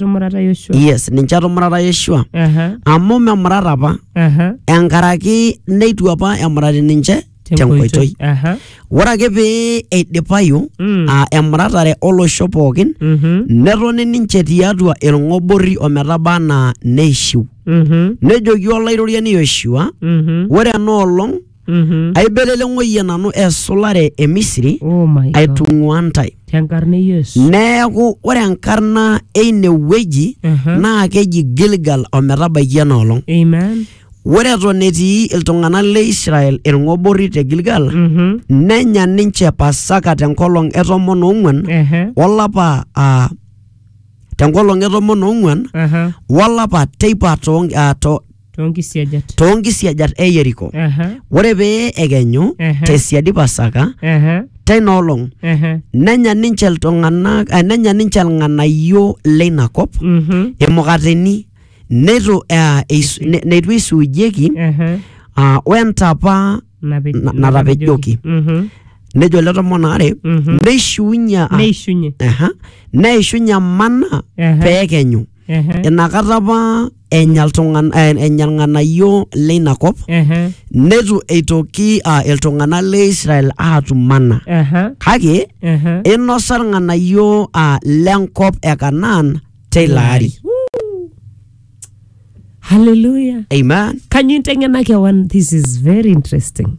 Tumurata Yoshua. yes ninche etumurata yeshua Aha, amu memurata apa aha. enkaraki neitu apa emurati ninche tenkoitoi Aha. ore ake pee eidipayu Mm. aa emuratare olosho pookin Mhm, netoni ninche tiatua ilng'oborri ometaba anaa neishiu mhm, nejoki olairoriani yoshua mhm. ore ena olong Mhm. aibelele ng'oyie nanu esulare e misiri Oh my God. aitung'ua ntae Tenkarna e Yesu. neeku ore enkarna eine wueji Mhm. naa keji gilgal ometabaiki ena olong Amen. ore eton etii iltung'anak le israel ilng'oborri te gilgal Mhm. nenya ninche pasaka tenkolong e tomon oong'uan Ehe. olapa ah, tenkolong e tomon oong'uan Aha. wolapa teipa too- ah, to- too nkisiajat too nkisiajat e Yeriko. Aha, Ore pee ekenyu Ehe. te siadi Pasaka aha, teina olong aha, nenya ninche iltung'anak eh, nenya ninche ilng'anayio leina kop mhm, imukateni neitu eh, eis- ne- neitu eisuujieki aha, ah, wentapa nape- Na- natapejoki. Mhm, nejo ele tomon aare Mhm. neishiunye ah, neishunye aha, neishunye mana aha. pee ekenyu Ehe. inakata apa enya iltung'an- eh, enya ilng'anayio leina kop Ehe. neitu eitoki ah, iltung'anak le israel aatum mana Ehe. kake Ehe. inosa ilng'anayio ah, lenkop e kanaan teilo ari Hallelujah. amen Can you intengena kewan? This is very interesting.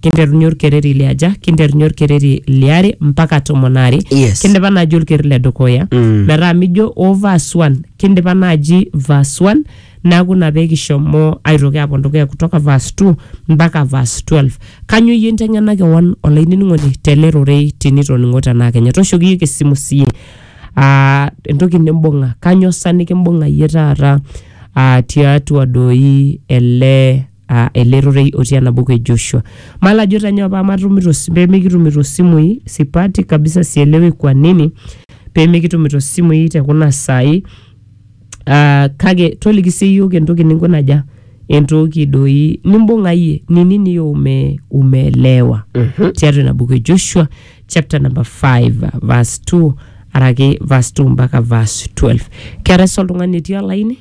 kinterunye olkereri le aja kinterunye olkereri liare mpaka tomon aare Yes. kindipa naaji olkereri le dukuya Mm. metaa mijo o verse 1 kindipa naaji verse 1 neaku ina pee kishomo aitoki apuo dukuya kutoka verse 2 mpaka verse 12 kanyo iyie inteng'ena kewon olainining'oni tele rorei tinitoning'o tenaa kenya tooshoki iyiook esimu siiyie Ah, entoki nimbung'a kanyo sa nikimbung'a iyie taata ah, tiatua doi ele uh, ele rorei otii ena buku e Joshua. Malo ajo tanyoo paa matumito si- pee mikitumito simui sipati kabisa, sielewi kwa nini pee mikitumito simui te kuna saai Ah, kake toliki sii yiok entoki ninkunaja entoki doi nimbung'a iyie ni nini yo ume, umeelewa Mhm. tiatua ina buku e joshua chapter number 5 verse 2 araki verse 2 mpaka verse 12 keetae sa oltung'ani etii olaini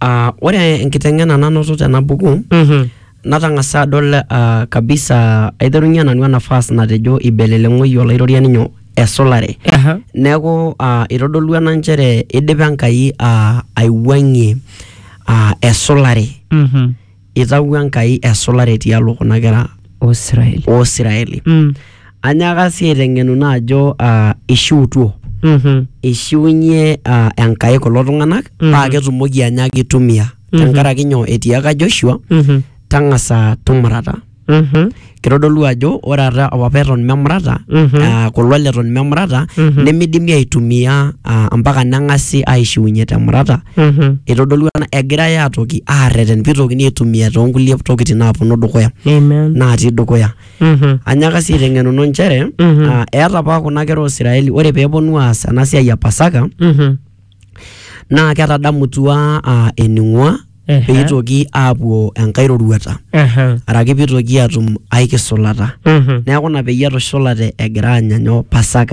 Ah, ore enkiteng'ena nanoto tena buku Mhm. natang'asa adol ah, kabisa aiterunye nanu ena verse natejo ibeleleng'oyie olairoriani nyoo esulare Aha. neeku ah, itodolua ena nchere idipa Enkai ah, aiwuang'ie ah, esulare Mhm. Eitawuo Enkai esulare tialo kuna kera oo Siraeli. oo Siraeli. Mm. Anyaaka sii aiteng'enu naa ajo ah, eishiutuo. Mhm. Eishiunye ah, Enkai kulo tung'anak Mhm. paa ketumoki anyaaki aitumia. Mhm. Tenkaraki nyoo? Etiaka Joshua, Mhm. tang'asa tumurata. Mhm. kitodolu ajo ore ata apa eton memurata Mhm. ah, kulo leton memurata Mhm. nemidimi aitumia ah, mpaka neng'asi aishiunye temurata Mhm. itodolu ena egirai atoki arreten pitokini aitumia toonkulie tokitin naaponu dukuya Amen. naatii dukuya Mhm. anyaka sii aiteng'enuno nchere Mhm. ah, eeta apa kuna kera oisiraeli ore peeponu aas ena siai e pasaka Mhm. naa ketadamutua uh, ening'ua Ehe. peitoki aapuo enkae roruata Aha. araki peitoki atum ae kisulata Mhm. neeku ina peyie etushulate egira aanya nyoo pasaka